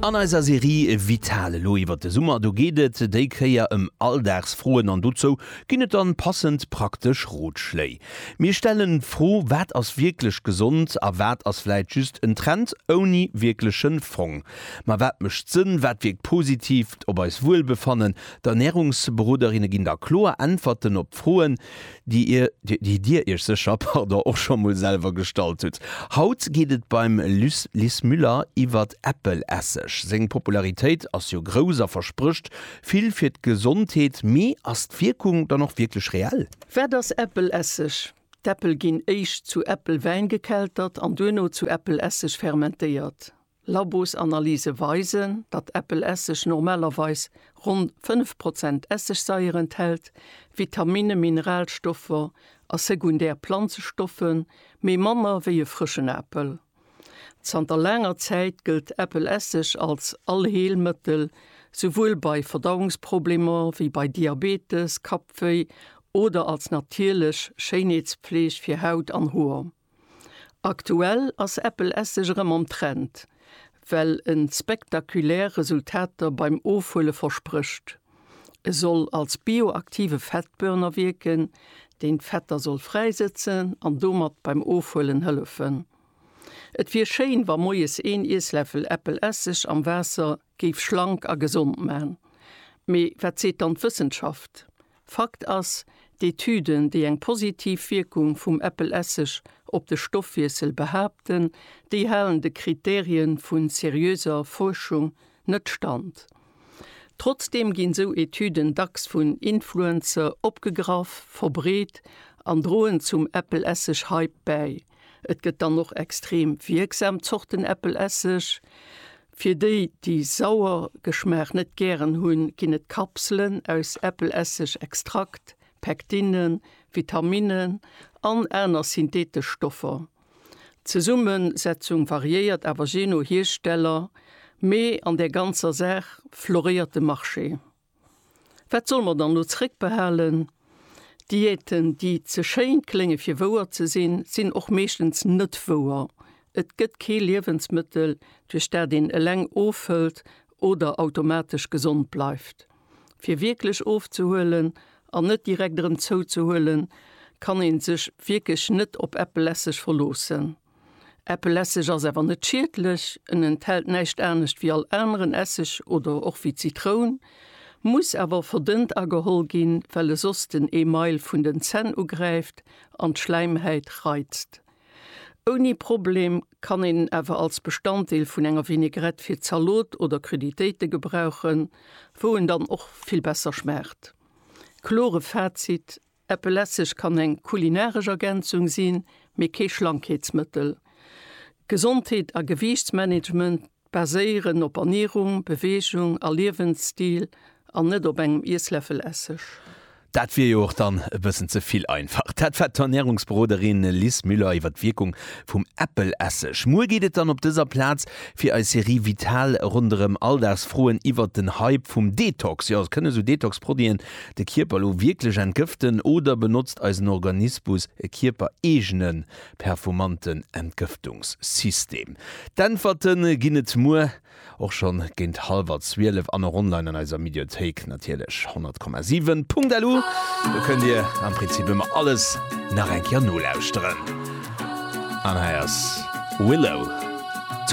An eiser Serie Vital elo iwwert de Summer, do geet et déi Kéier ëm Alldagsfroen an dozou ginn et dann passend praktesch Rotschléi. Mir stellen d'Fro, wat ass wierklech gesond a wat ass vläit just en Trend ouni wierklechen Fong? Ma wat mécht Sënn, wat wierkt positiv op eist Wuelbefannen? D'Ernärungsberoderinne ginn da kloer Äntwerten op d'Froen, déi ir, déi dir iech sécher, pardon, och scho mol selwer gestallt hutt. Haut geet et beim Liz Müller iwwert Äppelesseg. Seng Popularitéit ass jo grouss a versprécht vill fir d'Gesondheet, mee ass d'Wierkung dann och wierklech reell? Wat ass Äppelesseg? D'Äppel ginn éischt zu Äppelwäin gekeltert an duerno zu Äppelesseg fermentéiert. Labosanalyse weisen, datt Äppelesseg normalerweis ronn 5 Prozent Essigsaier enthält, Vitaminne, Mineralstoffer a sekundär Planzestoffe méi manner wéi e frëschen Apel. Zanter laanger Zäit gëllt Äppelesseg als Allheelmëttel, souwuel bei Verdauungsproblemer wéi bei Diabetes, Kappwéi oder als natierlech Schéinheetspfleeg fir Haut an Hoer. Aktuell ass Apple Esseg erëm am Trend, well en spektakulär Resultater beim Ofhuele versprécht. E soll als bioaktive Fettburner wierken, deen d'Fetter soll fräisëtzen an domat beim Ofhuelen hëllefen. Et wier schéin, wa moies een Iessläffel Apple Esseg am Waasser Géif schlank a gesond man. Mee wat seet dann d'Wëssenschaft? Fakt ass, d'Etüden, déi eng positiv Wierkung vum Äppelesseg op de Stoffwiessel behaapten, déi halen de Kriterien vu seriöser Fuerschung net stand. Trotzdeem ginn sou Etüden dacks vun Influencer opgegraff, verbreet an droen zum Äppelesseg-Hype bäi. Et gëtt dann och extrem wierksam Zorten Äppelesseg, Fir déi, déi sauer Geschmaach net gären hunn, ginn et Kapselen aus Äppelesseg, Extrakt, Pectine, Vitaminnen an aner synthetesch Stoffer. D'Zesummesetzung variéiert awer jee no Hiersteller, mee an der ganzer Saach floréiert de Marché. Wat solle mer dann elo zeréckbehalen? Diäten, déi ze schéin klénge fir wouer ze sinn, sinn och meeschtens net wouer. Et gëtt kee Liewensmëttel, duerch dat een eleng ofhëlt oder automatesch gesond bleift. Fir wierklech ofzehuelen an net direkt erëm zouzehuelen, kann ee sech wierklech net op eppelesseg verloossen. Äppel Esseg ass awer net schiedlech, en enthält näischt anescht wéi all aneren Esseg oder och wéi Zitroun, muss awer verdënnt ageholl ginn, well e soss den Email vun den Zänn ugräift an d'Schläimhäit reizt. Ouni Problem kann een en awer als Bestanddeel vun enger Vinägrette fir Zalot oder Cruditéite gebrauchen, wou en dann och vill besser schmaacht. Klore Fazit, Äppel Esseg kann eng kulinaresch Ergänzung sinn, mee kee Schlankheetsmëttel. Gesondheet a Gewiichtsmanagement baséieren op Ernierung, Beweegung a Liewensstil an net op engem Iessläffel Esseg. Dat wier jo och dann e bëssen ze vill einfach. Dat war d'Ernärungsberoderin Liz Müller iwwer d'Wierkung vum Äppel Esseg. Muer geet et dann op dëser Plaz fir eis Serie Vital ronderëm Alldagsfroen iwwer den Hype vum Detox. Jo, et kënne sou Detox-Produiten de Kierper lo wierklech entgëften oder benotzt eisen Organispus e kierpereegene perfomanten Entgëftungssystem? D'Äntwerte ginn et muer, och schonn géint hallwer 12 an och online an eiser Mediothéik natierlech 100,7.lu. Do kënnt dir am Prinzip ëmmer alles nach eng Kéier nolauschteren. An hei ass Willow.